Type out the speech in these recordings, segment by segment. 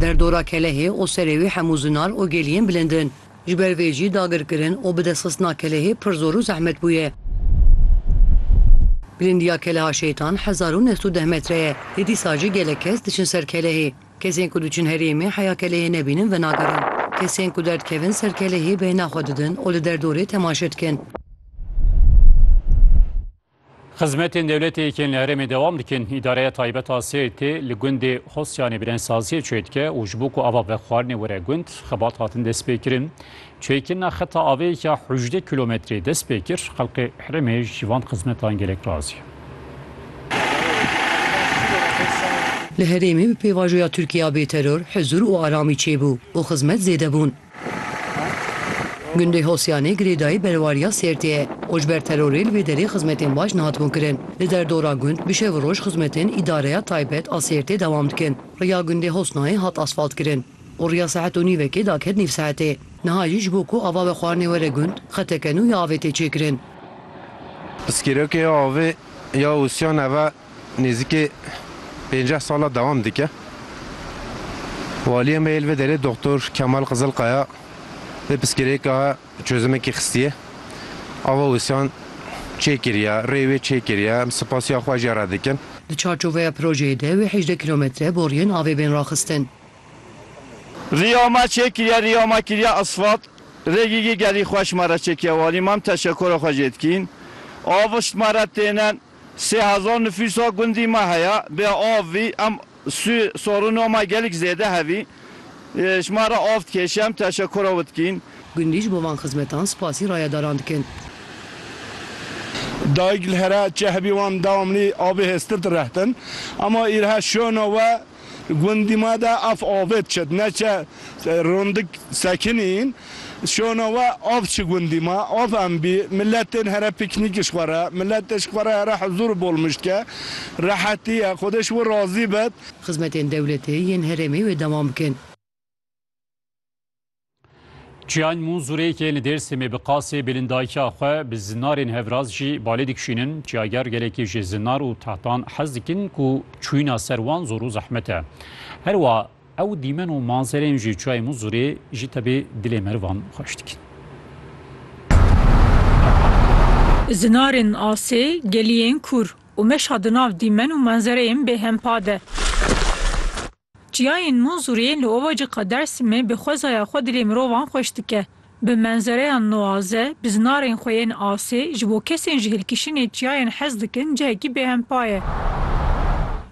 Derdora Kelehê û serê wî hemû zinar û geliyên bilind in. Ji ber vê jî dagirkirin û bidestxistina Kelehê pir zor û zehmet bûye. Bilindiya Keleha Şeytan hezar û neh sed û deh metre ye. Lê dîsa jî gelek kes diçin ser Kelehê. Kesên ku diçin herêmê heya Kelehê nebînin venagerin. Kesên ku derdikevin ser Kelehê bêhna xwe didin û li derdorê temaşe dikin. Xizmetên dewletê yên li herêmê dewam dikin. Îdareya taybet a Sêrtê li gundê Hosyanê birênsaziyê çê dike û ji bo ku ava vexwarinê were gund, xebat hatin destpêkirin. Çêkirina xeta avê ya hejdeh kîlometrê dest pê kir. Xelkê herêmê ji van xizmetan gelek razî ye. Li herêmê bi pêvajoya Tirkiye ya bêteror, huzûr û aramî çêbû û xizmet zêde bûn. Gundê Hosyanê girêdayî berwariya Sêrtê ye û ji ber terorê li vê derê xizmetên baş nehatibûn kirin. Li derdora gund bi şev û roj xizmetên Îdareya Taybet a Sêrtê dewam dikin. Riya gundê Hosnayê hat asfaltkirin û riya saet û nîvekê daket nîv saetê. Niha jî ji bo ku ava bi xwarinê were gund, xeteke nû ya avê tê çêkirin. Pirsgirêkê ya avê ya Hosyan ev e Nêzîkê pênceh sal e dewam dike. Waliyê me yê li vê derê Doxtor Kemal Qizilkaya vê pirsgirêka çozimekê xistiye. Ava wisiyan çêkiriye, rê wê çêkiriye. Em sipasiya xwe jê re dikin. Di çarçoveya projeyê de wê hejdeh kîlometre boriyên avê bên raxistin. Riya ma çêkiriye, riya ma kiriye asfalt. Rê gigî gelî xweş ma re çêkiriye. Walî mam teşekura xwe jê dikîn. Av şt ma re têne. Sê hezar nifûsa gundî me heye, bê av vî em sû sorûna me gelek zêde hevî. Ji me re av dikê, şem teşekûra we dikîn. Gundî ji bo van xizmetan spasî rayedaran dikin. Dayik li here çi hebî wan dewamlî avê hêztir direhtin. Ema îrhe şona we. Gundî ma de ev avê diçe di neçe rondik sekinîn şona we av çi gundî ma av em bî miletên here pîknîk ji xwe re miletê ji xwe re here hizûr û bolmij dike rehetî ye xwedê ji wir razî bit. Xizmetên dewletê yên herêmê wê dewam bikin. Çiyan Munzurê ke li Dêrsimê bi qasê bêlin dayikiya xwe bi zinarên hevraz jî balê dikişînin, çiyager gelekî ji zinar û tehtan hez dikin ku çûyîna ser wan zor û zehmet e. Her wa ew dîmen û manzerên ji Çiyayê Munzurê jî tevê dilê merivan xweş dikin. Zinarên asê, geliyên kûr û meşa di nav dîmen û manzereyên bêhempa de. Çiyayên Munzurê li ovaciqa Dersîmê bi xwezaya xwe dilê mirovan xweş dike. Bi menzereya nuaze, bi zinarên xwe yên asê, ji bo kesên ji hilkişînê çiyayên hez dikin cihekî bêhempa ye.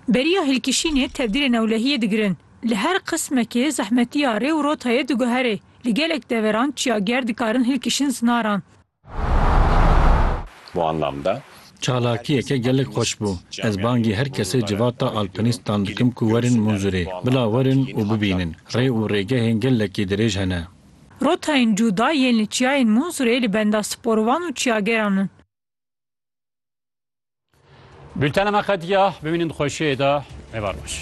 Beriya hilkişînê tevdîrê newlehiyê digirin. Li her qismekê zehmetiya rê û rotayê diguherê. Li gelek deveran çiyager dikarin hilkişin zinaran. Çalakiyeke gelek xweş bû. Ez bangî her kesê civata alpinistan dikim ku werin Munzurê. Bila werin û bibînin. Rê û rêgehên gelekî dirêj hene. Rotayên cuda yên li çiyayên Munzurê li benda sporovan û çiyageran in. Bültena me qetiya. Bimînin di xweşiyê de. Êvar baş.